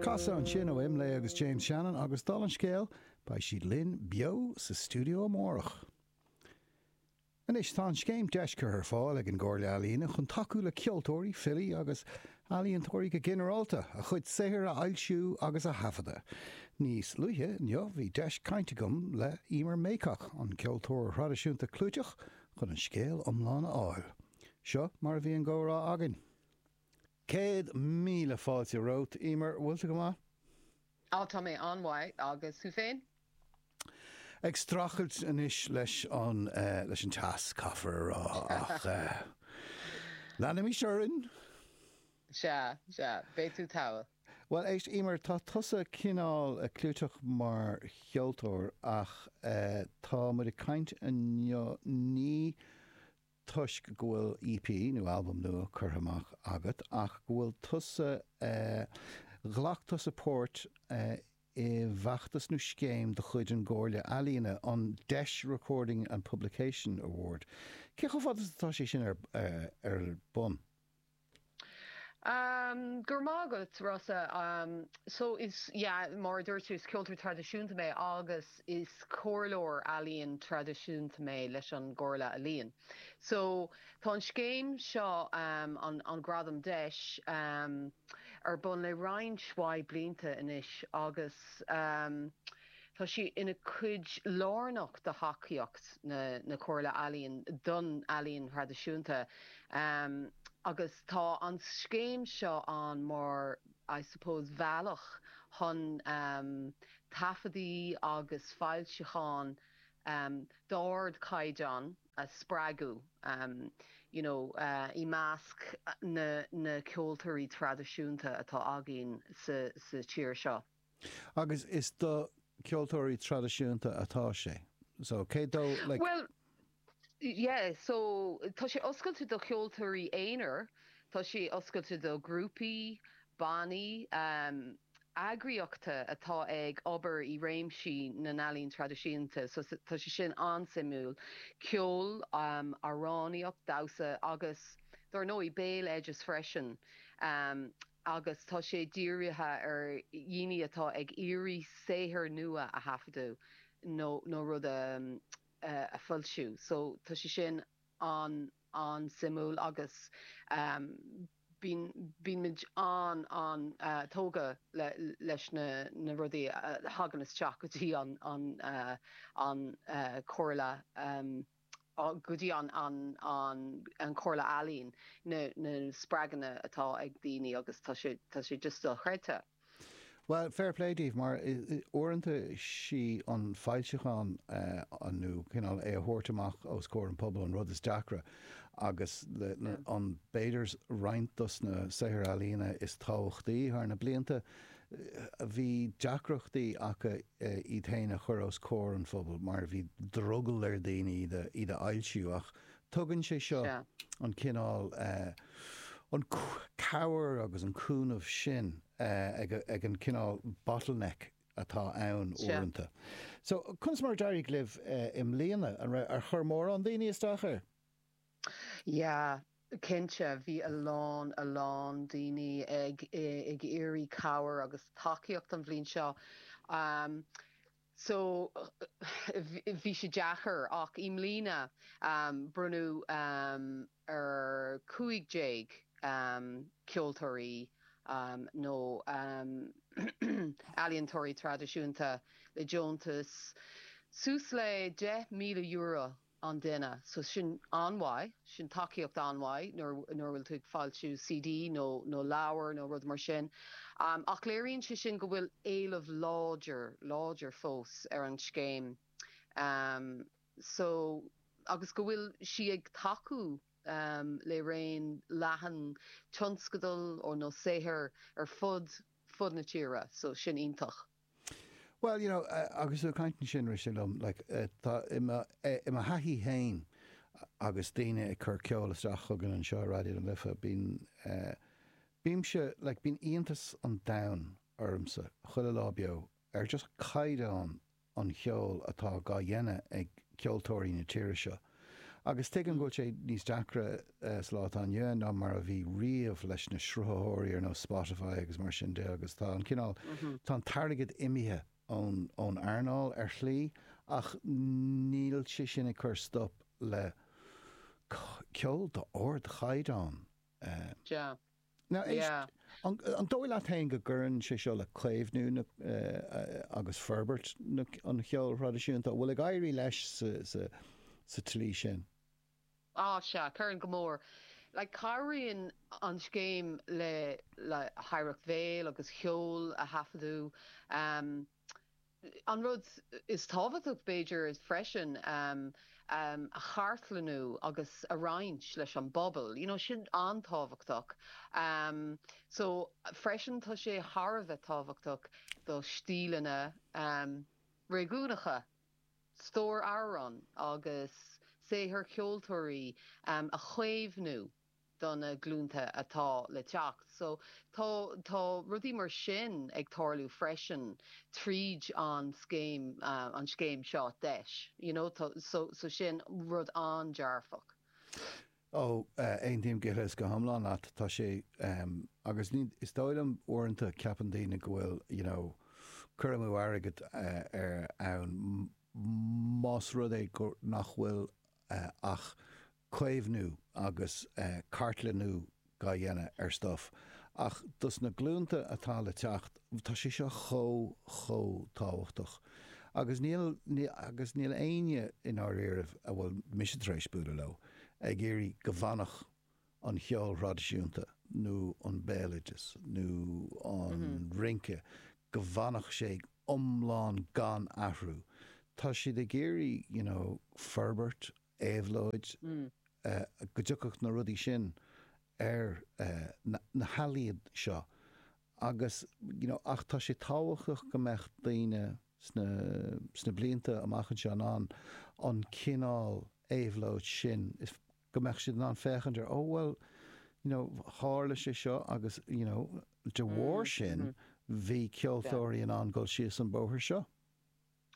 Casadh ansin ó Imlé agus James Shannon agus, dála an scéil, beidh siad linn beo sa stiúideo amárach. Anois, tá an scéim Deis curtha ar fáil ag an gComhairle Ealaíon chun tacú le ceoltóirí, filí agus ealaíontóirí go ginearálta, a chuid saothair a fhoilsiú agus a thaifeadadh. Níos luaithe inniu bhí deis caint agam le Emer Mayock, an ceoltóir traidisiúnta clúiteach, chun an scéal iomlán a fháil. Seo mar a bhí an gcomhrá againn. Céad míle fáilte romhat, Emer. Bhfuil tú go maith? Á, tá mé an-mhaith. Agus thú féin? Ag streachailt anois leis an, eh, leis an teas, caithfear a rá, ach, eh, leanaimis orainn. Sea, sea. Beidh tú togha. Bhuel, éist, Emer, tá tusa cineál clúiteach mar cheoltóir ach, eh, tá muid ag caint inniu, ní toisc go bhfuil EP nó albam nua curtha amach agat ach go bhfuil tusa ghlac tusa páirt i bhfeachtas nó scéim de chuid an gComhairle Ealaíon, an Deis Recording and Publication Award. Cé chomh fada is atá sé sin ar bun? Go raibh maith agat, Rossa. So is, yeah, mar a dúirt tú, is ceoltóir traidisiúnta mé agus is comhairleoir ealaíon traidisiúnta mé leis an gComhairle Ealaíon. So tá an scéim seo, an an Gradam Deis, ar bun le roinnt maith blianta anois agus, Tá sí ina cuid lárnach de thacaíocht na Comhairle Ealaíon don ealaín thraidisiúnta agus tá an scéim seo ann mar I suppose bhealach chun taifeadaí agus foilseacháin d'ardchaighdeán a spreagadh you know i measc na ceoltóirí traidisiúnta atá againn sa tír seo. Agus is do ceoltóirí traidisiúnta atá sé. So, cé dó, like. Bhuel, yeah, so, tá sé oscailte do cheoltóirí aonair, tá sé oscailte do ghrúpaí, bannaí, eagraíochtaí atá ag obair i réimsí na n-ealaíon traidisiúnta, so, tá sé sin an-suimiúil. Ceol, amhránaíocht, damhsa agus dár ndóigh, béaloideas freisin. agus tá sé dírithe ar dhaoine atá ag iarraidh saothar nua a thaifeadadh nó nó rud a a foilsiú so tá sé sin an an-suimiúil agus bíonn bíonn muid an an tógtha le leis na na rudaí a thagann isteach go dtí an an an Chomhairle. go dtí an Chomhairle Ealaíon, na spreagthaí atá ag daoine agus tá sé just dochreidte. Bhuel, fair play daoibh mar uaireanta 'sí an foilseachán nó cineál é a thabhairt amach os comhair an pobal an rud is deacra agus b'fhéidir roinnt dos na saothair ealaíona is tábhachtaí thar na blianta bhí deacrachtaí acu iad féin a chur os comhair an phobail mar bhí drogall ar dhaoine iad a fhoilsiú ach tugann sé seo an cineál cabhair agus an cúnamh sin ag an gcineál bottleneck atá ann uaireanta. So, conas mar a d'éirigh libh i mbliana? Ar chuir mórán daoine isteach air? Yeah, cinnte, bhí a lán, a lán daoine ag, ag iarraidh cabhair agus tacaíocht an bhliain seo. Um so, bhí sé deacair ach i mbliana um bronnadh um ar cúig déag um ceoltóirí um nó um ealaíontóirí traidisiúnta le deontas suas le deich míle euro an duine. So sin an-mhaith, sin tacaíocht an-mhaith nuair a bhfuil tú ag foilsiú CD nó leabhar nó rud mar sin. Ach léiríonn sé sin go bhfuil éileamh láidir, láidir fós ar an scéim. So agus go bhfuil sí ag tacú le raon leathan tionscadal nó saothair ar fud, fud na tíre. So sin iontach. Bhuel, you know, agus tú ag caint ansin, rith sé liom, like, tá, i mo, i mo thaithí fhéin, agus daoine ag cur ceol isteach chugainn anseo i Raidió na Life, bíonn, bímse, like, bíonn iontas an domhain ormsa, chuile lá beo, ar just caighdeán an cheoil atá dhá dhéanamh ag ceoltóirí na tíre seo, Agus tuigim go bhfuil sé níos deacra sa lá atá inniu ann ná mar a bhí riamh leis na sruthaitheoirí ar nós Spotify agus mar sin de agus tá an cineál, tá an t-airgead imithe ón earnáil ar shlí ach níl sé sin ag cur stop le ceol d'ardchaighdeán. Sea, An dóigh leat féin go gcuireann sé seo le caomhnú agus forbairt an cheoil thraidisiúnta, an bhfuil ag éirí leis sa tslí sin? Á, sea, cuireann go mór. Like, cabhraíonn an scéim le hoidhreacht bhéil agus cheoil a thaifeadadh. An rud is tábhachtach, b'fhéidir, freisin a chartlannú agus a roinnt leis an bpobal, you know, sin an-tábhachtach. So, freisin, tá sé thar a bheith tábhachtach do stíleanna réigiúnacha, stór amhrán agus saothar ceoltóirí a chaomhnú. do na glúnta atá le teacht. So tá tá rudaí mar sin ag tarlú freisin tríd an scéim an scéim seo deis you know so sin rud an-dearfach. Ó, aontaím go huile is go hiomlán leat. Tá sé agus is dóigh liom uaireanta ceapann daoine go bhfuil you know cur amú airgid ann más rud é go nach bhfuil ach caomhnú agus cartlannú á dhéanamh ar stuif ach dos na glúnta atá le teacht tá sé seo chomh chomh tábhachtach agus níl agus níl éinne i ndáiríribh, a bhfuil mise tar éis bualadh leo, ag iarraidh go bhfanfadh an ceol traidisiúnta nó an béaloideas nó an rince go bhfanfadh sé iomlán gan athrú. Tá siad ag iarraidh, you know, forbairt éabhlóid, go dtiocfadh na rudaí sin ar na healaíon seo agus you know ach tá sé tábhachtach go mbeadh daoine sna sna blianta amach anseo in ann an cineál éabhlóid sin go mbeadh siad in ann féachaint ar oh well you know tharla sé seo agus you know de bharr sin bhí ceoltóirí in ann dul síos an bóthar seo.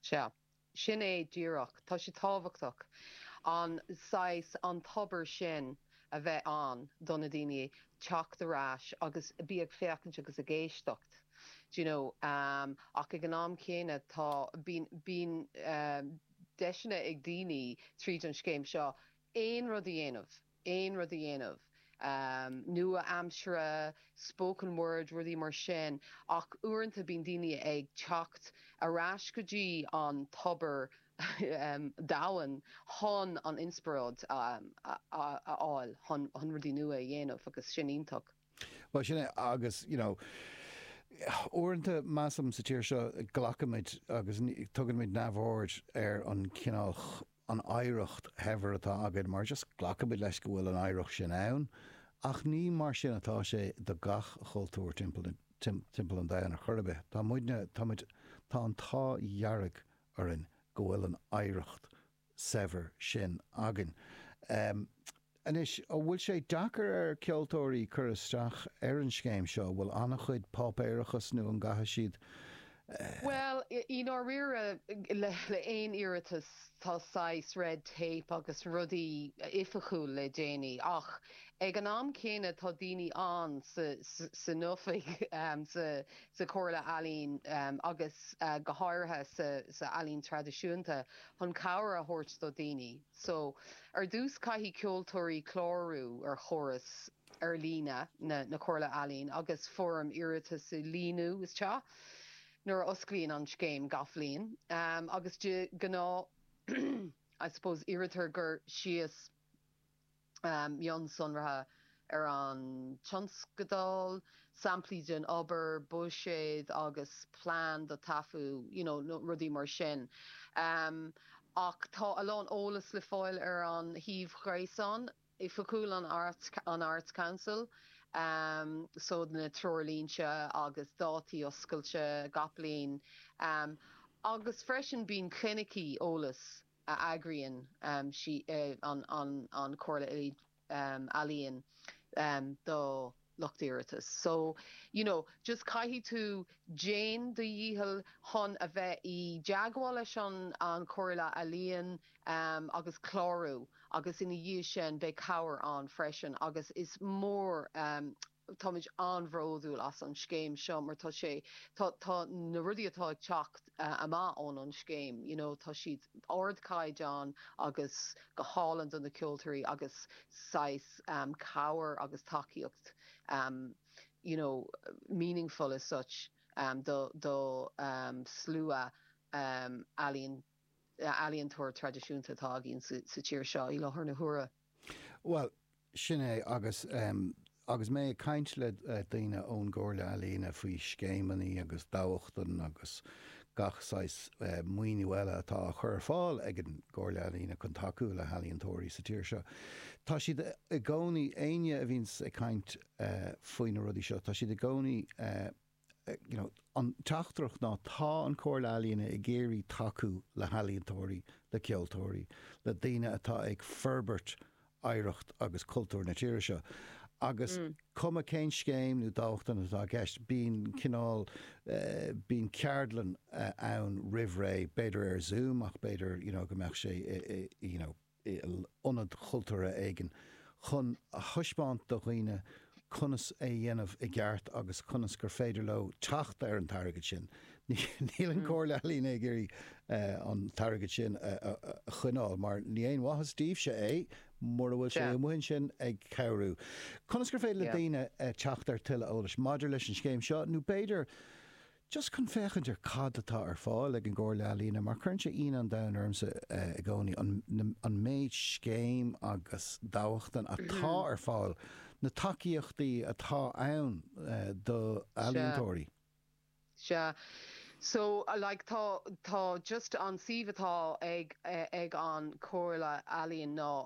Sea, Sin é díreach. Tá sé tábhachtach an saghas, an tobar sin a bheith ann do na daoine teacht ar ais agus a bheith ag féachaint agus ag éisteacht, do you know, ach ag an am chéanna tá, bíonn, bíonn deiseanna ag daoine tríd an scéim seo aon rud a dhéanamh. aon rud a dhéanamh nua-aimsire, spoken word, rudaí mar sin, ach uaireanta bíonn daoine ag teacht ar ais go dtí an tobar domhain chun an inspioráid a fháil chun rudaí nua a dhéanamh agus sin iontach. Bhuel, sin é agus you know uaireanta measaim sa tír seo glacaimid agus tugaimid neamhaird ar an chineál, an oidhreacht shaibhir atá againn mar just glacaimid leis go bhfuil an oidhreacht sin ann ach ní mar sin atá sé do gach cultúr timpeall an domhain ar chor ar bith. Tá muidne, táimid, tá an t-ádh dhearg orainn go bhfuil an oidhreacht shaibhir sin againn. Anois, an bhfuil sé deacair ar cheoltóirí cur isteach ar an scéim seo, an bhfuil an-chuid páipéarachas nó an gcaitheann siad eh. Bhuel, i ndáiríre, le haon iarratas tá saghas red tape agus rudaí oifigiúil le déanamh ach ag an am céanna tá daoine ann san oifig, sa Chomhairle Ealaíon agus go háirithe sa ealaín traidisiúnta chun cabhair a thabhairt do dhaoine. So, ar dtús caithfidh ceoltóirí clárú ar chóras ar líne na Comhairle Ealaíon agus foirm iarratais a líonadh isteach nuair a osclaíonn an scéim gach bhliain agus de ghnáth I suppose iarrtar cur síos mionsonraithe ar an tionscadal, samplaí den obair, buiséad agus plean do taifead you know rudaí mar sin ach tá a lán eolas le fáil ar an suíomh gréasáin oifigiúil an Arts Council so na treoirlínte agus dátaí oscailte gach bliain agus freisin bíonn clinicí eolais a eagraíonn an Chomhairle Ealaíon do lucht iarratas. So, you know, just caithfidh tú déan do dhícheall chun a bheith i dteagmháil leis an Chomhairle Ealaíon agus clárú agus ina dhiaidh sin beidh cabhair ann freisin agus is mór an Táimid an-bhródúil as an scéim seo mar tá sé, tá, tá na rudaí atá ag teacht amach ón an scéim, you know, tá siad ardchaighdeán agus go hálainn do na ceoltóirí agus saghas cabhair agus tacaíocht you know, meaningful as such do, do slua ealaíon, ealaíontóir traidisiúnta atá againn sa tír seo i láthair na huaire. Bhuel, sin é agus agus mé ag caint le daoine ón gComhairle Ealaíne faoi scéimeanna agus dámhachtain agus gach saghas maoiniú eile atá á chur ar fáil ag an gComhairle Ealaíne chun tacú le healaíontóirí sa tír seo, tá siad i gcónaí, éinne a bhíonn ag caint faoi na rudaí seo, tá siad i gcónaí you know, an teachtaireacht ná tá an Chomhairle Ealaíne ag iarraidh tacú le healaíontóirí, le ceoltóirí, le daoine atá ag forbairt oidhreacht agus cultúr na tíre seo agus cuma cén scéim nó dámhachtain atá i gceist, bíonn cineál, eh, bíonn ceardlanna ann roimh ré, b'fhéidir ar Zoom ach b'fhéidir, you know, go mbeadh sé i, i, you know, i ionad chultúrtha éigin, chun a thaispeáint do dhaoine conas é a dhéanamh i gceart agus conas gur féidir leo teacht ar an t-airgead sin. Níl an Comhairle Ealaíne ag iarraidh an t-airgead sin a choinneáil mar níl aon mhaitheas daoibhse é mura bhfuil sé amuigh ansin ag cabhrú. Conas gur féidir le daoine teacht ar tuilleadh eolais maidir leis an scéim seo nó b'fhéidir Just chun féachaint ar cad atá ar fáil ag an gComhairle Ealaíne, mar cuireann sé ionadh an domhain ormsa i gcónaí an méid scéim agus dámhachtain atá ar fáil, na tacaíochtaí atá ann do ealaíontóirí. Sea. So, like, tá, tá just an suíomh atá ag, ag an Chomhairle Ealaíon ná.